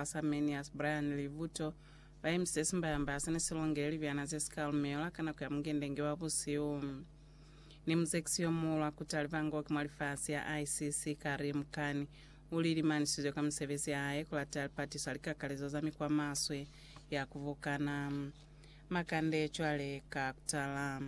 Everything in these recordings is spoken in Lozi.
Asarmenius Brian Livuto ba emisitse simbayamba ha sene si longele libyana ze si ka lumelwa ka nako ya mungendenge wa busihu. Ni muzekisi yo muhulu a kuta libango ki mwa lifasi ya ICC, Karim Khan, u li limanisizwe ka misebezi ya hae ku lata lipatiso ha likakalezo za mikwa maswe ya ku bukana makande cwale ka kutala.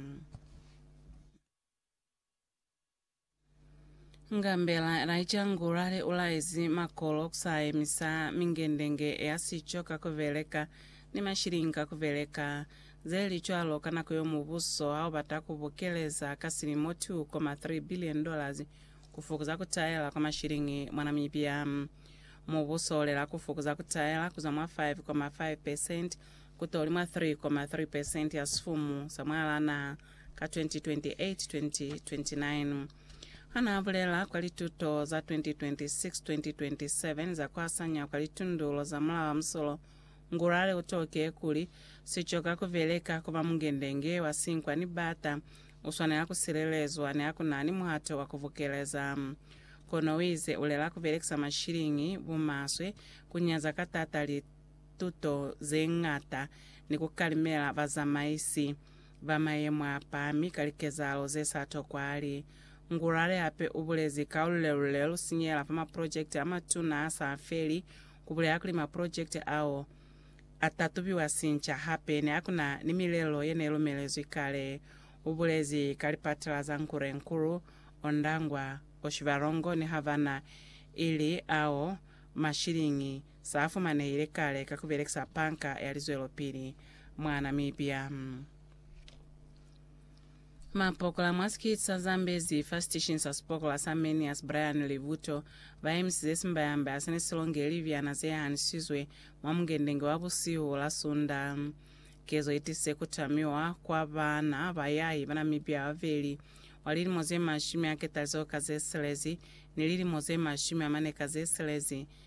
Ngambela Elijah Ngulale ulaezi makolo kusaemisa mingendenge ya sico ka kubeleka ni mashilingi ka kubeleka zelicwalo ka nako yo mubuso haubata kubukeleza ka silimo 2.3 billion dollars kufukuza kutaela kwa mashilingi mwa Namibia. Mubuso ulela kufukuza kutaela kuzwa mwa 5.5 percent kutoli mwa 3.3 percent ya sifumu sa mwalaa naha ka 2028-2029. Ha n'a bulela kwa lituto za 2026-2027 za ku asanya kwa litundulo za Mulao wa Musolo, Ngurare u toke kuli, Si coka ku beleka ku ba mungendenge wa sinkwa ni bata, u swanela ku silelezwa ni ha ku na ni muhato wa ku bukeleza. Kono u ize u lela ku belekisa mashiliñi bumaswe, ku nyaza ka t'ata lituto ze ñata ni ku kalimela bazamaisi ba mayemo a pami ka likezahalo ze sa tokwali. Ngurare hape u bulezi ka lulelule lu sinyehela fa maprojekiti a matuna a sa feli, ku bulela kuli maprojekiti ao a ta tubiwa sinca hape ni ha ku na ni milelo ye ne lumelezwi kale, u bulezi ka lipatala za Nkurenkuru, Ondangwa, Oshibarongo ni Havana, ili ao mashilingi Sa fumanehile kale ka ku belekisa Panka ya Lizwelopili mwa Namibia. Mapokola mwa sikiti sa Zambezi fa sitishinyi sa sipokola sa Manias Brian Libuto ba emisize simbayambaya se ne si longe libyana ze hanisizwe mwa mungendenge wa busihu la Sunda. Kezo i tisize ku tamiwa kwa baana bayahi ba Namibia babeli wa lilimo ze mashumi a ketalizoho ka ze silezi ni lilimo ze mashumi a mane ka ze silezi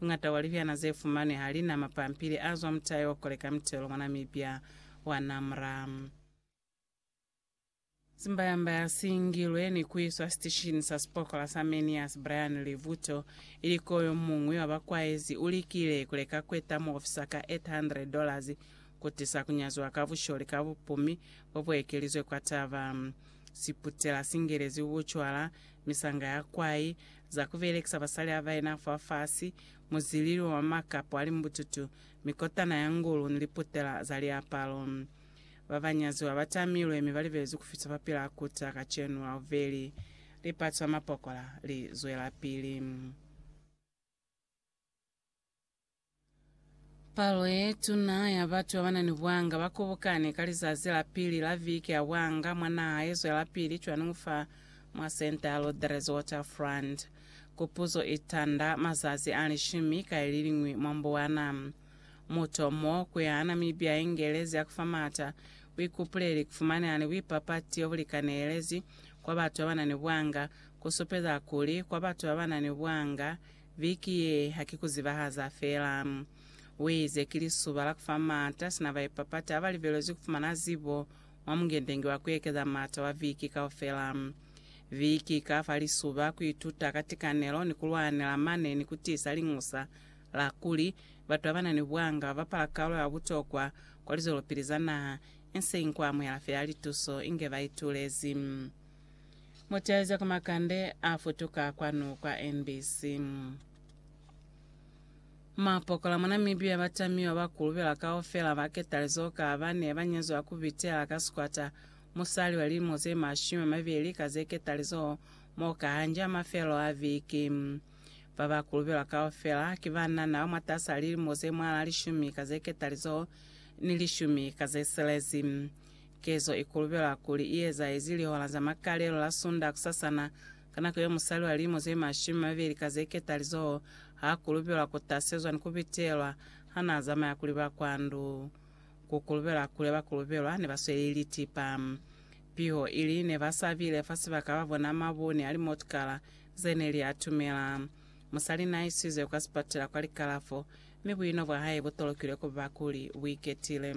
Mungata wa libyana ze fumanwi ha li na mapampili a zwa mutai wa ku koleka mitelo mwa Namibia wa NAMRA. Zimbayambaya si ngilwe ni ku iswa sitishini sa sipokola sa Manias Brian Livuto ili ko yo muñwi wa ba kwaezi u likile ku leka ku eta muofisa ka $800 ku tisa ku nyaziwa ka busholi ka bupumi bo bu ekelizwe kwa taba. Siputela si ngelezi bucwala, misanga ya kwai, za ku belekisa basali ba baena fa fasi, muzilili wa makapo a limbututu, mikotana ya ngulu ni liputela za liapalo. Ba ba nyaziwa ba tamilwe mi ba libelezwi ku fita fa pila kuta kacenu la bubeli. Lipatu la mapokola li zwelapili. Palo ye tuna ya batu babana ni bwanga ba kobokane ka lizazi la pili la viki ya bwanga mwa naha ye zwelapili cwaningu fa mwa Centre Rodrigues Waterfront. Kupuzo i tanda mazazi a lishumi ka iliñwi mwa mbuwana. Mutu o mo ku ya Namibia ya ingeelezi ya ku fa maata buikupuleli, ku fumaneha ni buipapati obu likanehelezi kwa batu babana ni bwanga, ku supeza kuli kwa batu babana ni bwanga, Viki ye ha ki ku zibahaza fela. U ize, Ki lisuba la ku fa m'ata sina baipapati ha ba libelezwi ku fumana zibo mwa mungendengi wa ku ekeza m'ata wa viki kaufela. Viki i ka fa lisuba ku ituta ka tikanelo ni ku lwanela mane ni ku tiisa liñusa la kuli batu ba ba na ni buanga ba bapala kalo ya butokwa kwa lizwelopili za naha, inseñi ku amuhela fela lituso inge ba itulezi. Muteza ku makande a futuka kwanu kwa NBC. Mapokola mwa Namibia ba tamiwa ba kulubela kaufela ba ketalizo ka ba ne ba nyezwa ku bitela ka sikwata musali wa lilimo ze mashumi a mabeli ka ze ketalizo mo ka hanja mafelo a viki. Ba ba kulubelwa kaufela ki banana ba mwatasa lilimo ze mwal'a lishumi ka ze ketalizo ni lishumi ka ze silezi. Kezo i kulubelwa kuli i ezahezi lihola za makalelo la Sunda kusasana, ka nako yeo musali wa lilimo ze mashumi mabeli ka ze ketalizoho ha kulubelwa ku tasezwa ni ku bitelwa ha n'a zamaya kuli ba kwa ndu. Ku kulubelwa kule ba kulubelwa ne ba sweli litipa. Piho ili ne ba sa bile fa sibaka ba bona mabuni a limotukala ze ne li atumela. Musali n'a isizwe kwa sipatela kwa likalafo, mi buino bwa hae bu tolokilwe ku ba kuli bu iketile.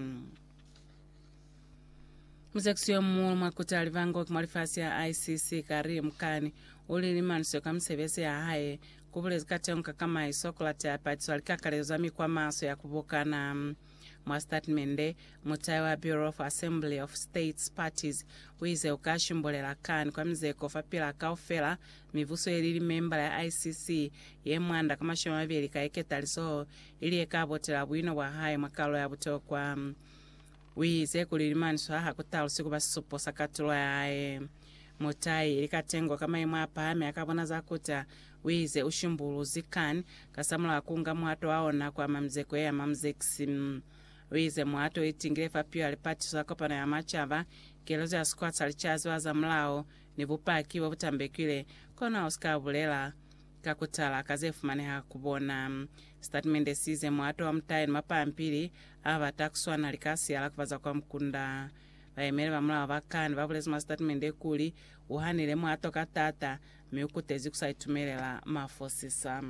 Musekiso yo muulu mwa kuta livangoki mwa lifasi ya ICC kari mukani u li limaniswe ka misebezi ya hae, ku bulezi katengo ka kamaiso, ku late a patiswa likakalezo za mikwa maso ya ku bokana. Mwa sitatimende, mutai wa Bureau of Assembly of States Parties u ize u ka shimbulela kani kwa mizeko fapil'a kaufela mibuso ye li limembala ya ICC ye mwanda ka mashumi a mabeli ka ye ketalizoho, ili ye ka botela buino bwa hae mwa kalulo ya butokwa. U ize kuli limanzwi a ha ku talusi ku ba sisupo sa katulo ya hae. Mutai ili katengo ka maimo a pahami a ka bona za kuta, u ize u shimbuluzi Khan kasamulaho ku nga muhato wa ona ku ama mizeko ye ya mamzekisi. U ize muhato u itingile fa pilu ya lipatiso la Kopano ya Macaba, keletso ya sikwa sa licaziwa zamulaho, ni bupaki bo bu tambekile, kono ha u si ka bulela Ka ku tala ka ze fumaneha ku bona, sitatimende si ize muhato wa mutayi ni mapampili a bata ku swana li ka siyala ku ba za kwa mukunda. Bayemeli ba mulao ba kani ba bulezi mwa sitatimende kuli, U hanile muhato ka taata, mi u kutezi ku sa itumelela mafosisa.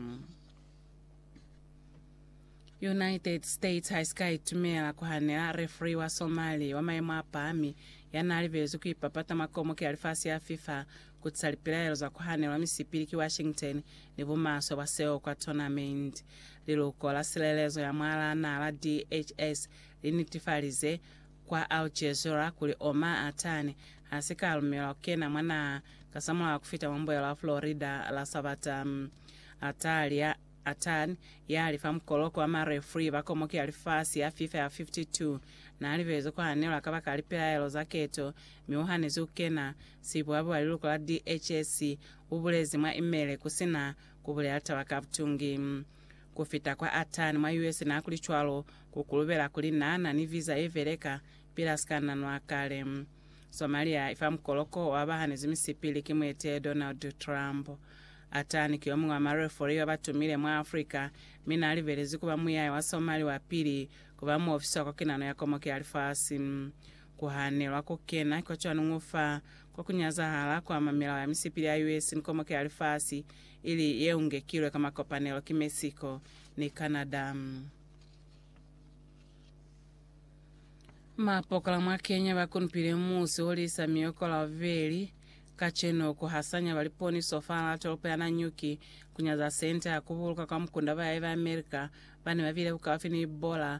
United States ha i si ka itumela ku hanela refri wa Somali wa mayemo a pahami ya n'a libelezwi ku ipapata mwa komoki ya lifasi ya FIFA Ku ca lipilaelo za ku hanelwa misipi li ki Washington ni bumaswe bwa seo kwa tournament, liluko la silelezo ya mwalaa naa la DHS li nitifalize kwa Al Jazeera kuli Omar Attani ha si ka lumelwa ku kena mwa naha kasamulaho ku fita mwa mbuelo ya Florida la Sabata. Attani, ya li fa mukoloko wa ma referee ba komoki ya lifasi ya FIFA ya 52, naa libelezwe ku hanelwa kabakala lipilaelo za keto mi u hanezi ku kena Sibwabo wa liluko la DHS ubulezi mwa imele kusina kubulela taba ka butungi. Kufita kwa atani mwa US naakuli cwalo, kukulubela kuli naana ni visa yebeleka pili asikanna nwa kale. Somalia ifa mukoloko wa bahanezi misipili ki muetele Donald Trump. Atani ki yomuñwi wa marefori babatumile mwa Africa, mi naalibelezi kuba muyaya wa Somali wapili kuba muofisi wa kokinano ya komoki ya lifasi. Ku hanelwa ku kena kwa cwanuñu fa kwa ku nyazahala kwa mamilao ya misipili ya US ni Komoke ya Lifasi, ili ye ungekilwe ka makopanelo ki Mexico ni Canada. Mapokola mwa Kenya ba kunupile musi o lisa miyoko la bubeli kacenu ku hasanya ba liponiso fahal'a tolopo ya Nanyuki ku nyaza sente ha ku buluka kwa mukunda ba yae ba America ba ne ba bile bukaufi ni bola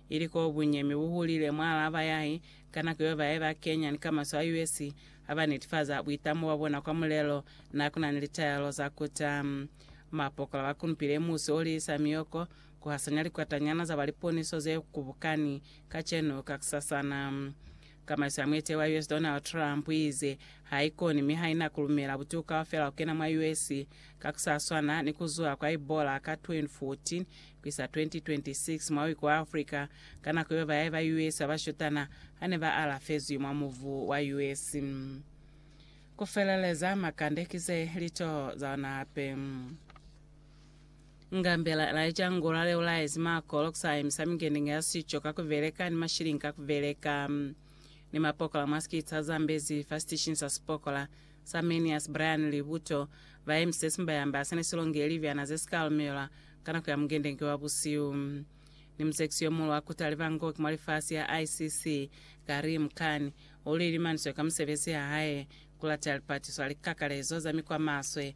Ili koo bunyemi bu hulile mwa alaba yahe, ka nako yeo bae ba Kenyan ka maswe a US ha ba netifaza buitamo bwa bona kwa mulelo na ku na ni litaelo za kuta. Mapokola ba kunupile musi o liisa mioko, ku hasanya likwatanyana za ba liponiso ze kubukani kacenu kakusasana. Ka masi a muetehi wa US Donald Trump uize, Haikoni mi haina kulumela butuku kaufela kukena mwa US, ka kusaswana ni kuzuha kwa Ebola ka 2014 kuisa 2026 mwa uiko wa Africa, ka nako yeo bayahi ba US babashutana hane ba alafezwi mwa mubu wa US. Kufeleleza makande kize litoho zaona hape. Ngambela Elijah Ngula leo laezi Marco lokusa emisa mingenenge ya sico ka kubeleka ni mashilingi ka kubeleka. Ni mapokola mwa sikitsa Zambezi fa sitishinyi sa sipokola sa Manias Brian Libuto ba emise simbayamba sene silonge ilibyana ze sika lumelwa ka nako ya mungendenge wa busiu. Ni muzekisi yomuulu wa kuta libangoki mwa lifasi ya ICC Karim Khan uli limaniswe ka musebezi ya hae kulata lipatiso a likakalezo za mikwa maswe